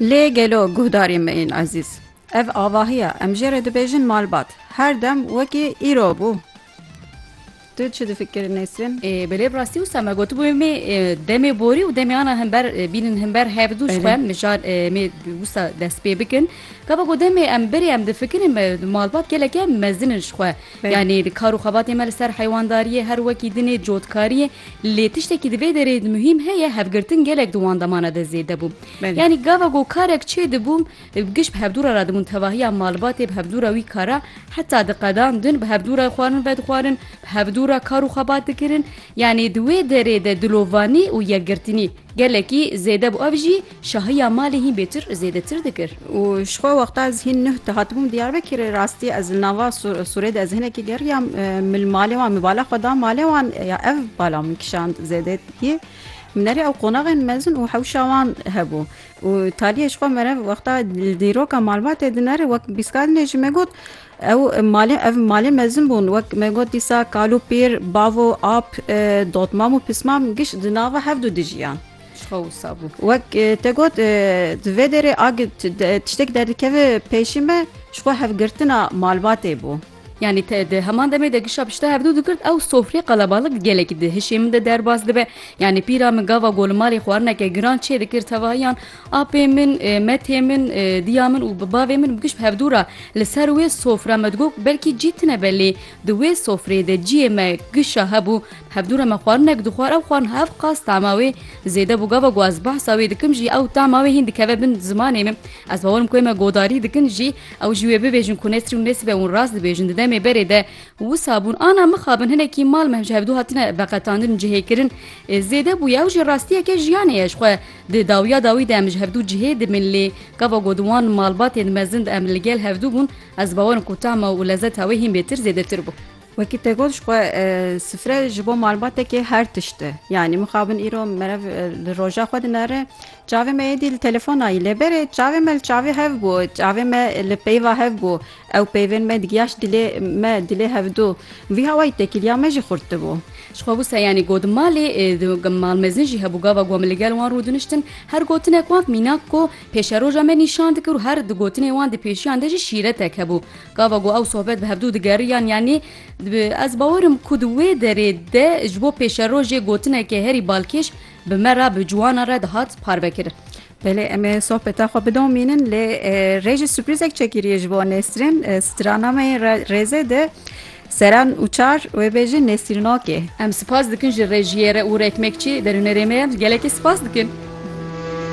Lê gelo guhdarê me ên ezîz. Ev avahiya em jê re dibêjin malbat her dem wekî îro bû. Tu çi difikir Nesrin? Belê bi rastî wisa me gotibû em ê demê borî û demê ana hember bînin hember hevdû ji xwe mijar em ê wisa dest pê bikin. Gava ku demê em birê em difikirin me malbat geleke mezin in ji xwe. Yanî kar û xebatê me li ser heywandariyê her wekî din ê cotkariyê. Lê tiştekî di vê derê di muhîm heye hevgirtin gelek di wan demana de zêde bû. Yanî gava ku karek çê dibû giş bi hevdûra re dibûn tevahiya malbatê bi hevdûra wî kara heta di qedan din bi hevdûra xwarin vedixwarin bi hevdûra kar û xebat dikirin. Yanî di wê derê de dilovanî û yekgirtinî gelekî zêde bû ev jî Şahiya malê hîn bêtir zêdetir dikir. Û ji xwe wexta ez hîn nuh dihatibûm Diyarbekirê rastî ez li nava Sûrê de ez hinekî geriyam min malê wan min bala xwe da malê wan ya ev bala min kişand zêdê yê min erê ew qonaxên mezin û hewşa wan hebû û taliyê ji xwe merev wexta li dîroka malbatê din erê wek bîskadinê jî me got ew malê ev malê mezin bûn wek me got dîsa kal û pîr bavo ap dotmam û pismam giş di nava hevdu dijiyan. Çixa wisa bû. Wek te got di vê derê a tiştek derdikeve pêşî me jixwe hevgirtina malbatê bû. Yani te de heman demê de gişa pişta herdû digirt ew sofrê qelebalık gelekî di hişê min de derbas dibe. Yani pîra min gava golimarê xwarineke giran çê dikir tevahiyan apê min, metê min, diya min û bi bavê min bi giş bi hevdû ra li ser wê sofra me digot belkî cî tine be lê Di wê sofreyê de ciyê me kişa hebû, hevdû re me xwarinek dixwar, ew xwarin hev qas tama wê zêde bû, gava ku ez behsa wê dikim jî ew tama wê hîn dikeve bin zimanê min. Ez bawerim ku wê me godarî dikin jî ew jî wê bibêjin ku nesrî û nesibe û rast dibêjin di demê berê de wisa bûn ana mixabin hinekî mal me ji hevdû hatine veqetandin û cihêkirin zêde bûye ew jî rastiyeke jiyanê ye jixwe di dawiya dawî de em ji hevdû cihê dibin lê gava ku di wan malbatên mezin de em li gel hevdû bûn Ez bawerim ku tama û lezeta wê hîn bêtir zêdetir bû. Wekî te got ji xwe sifre ji bo malbatekê her tişt e. Yanî mixabin îro merev li roja xwe dinere. Çavê me êdî li telefona yî. Lê berê çavê me li çavê hev bû. Çavê me li peyva hev bû. Ew peyvên me digiyaşt dilê me, dilê hevdu. Vî hawayî tekîliya me jî xurt dibû. Ji xwe wisa yanî got malê malmezin jî hebû. Gava ku em li gel wan rûdiniştin her gotinek wan mînak ku Pêşeroja me nîşan dike û her di gotinên wan di pêşiyan de jî şîretek hebû. Gava ku ew sohbet bi hevdu digeriyan yanî ez bawer im ku di wê derê de ji bo pêşerojê gotineke herî balkêş bi me re bi ciwana re dihat parvekirin. Belê em ê sohbeta xwe bidomînin lê rê jî sürprîzek çekiriye ji bo Nesrîn. Strana me yên rêzê de seran û çar wê bêjin Nesrînokê. Em sipas dikin ji rejiyê re û rêkmekçî derûnerê me gelekî sipas dikin.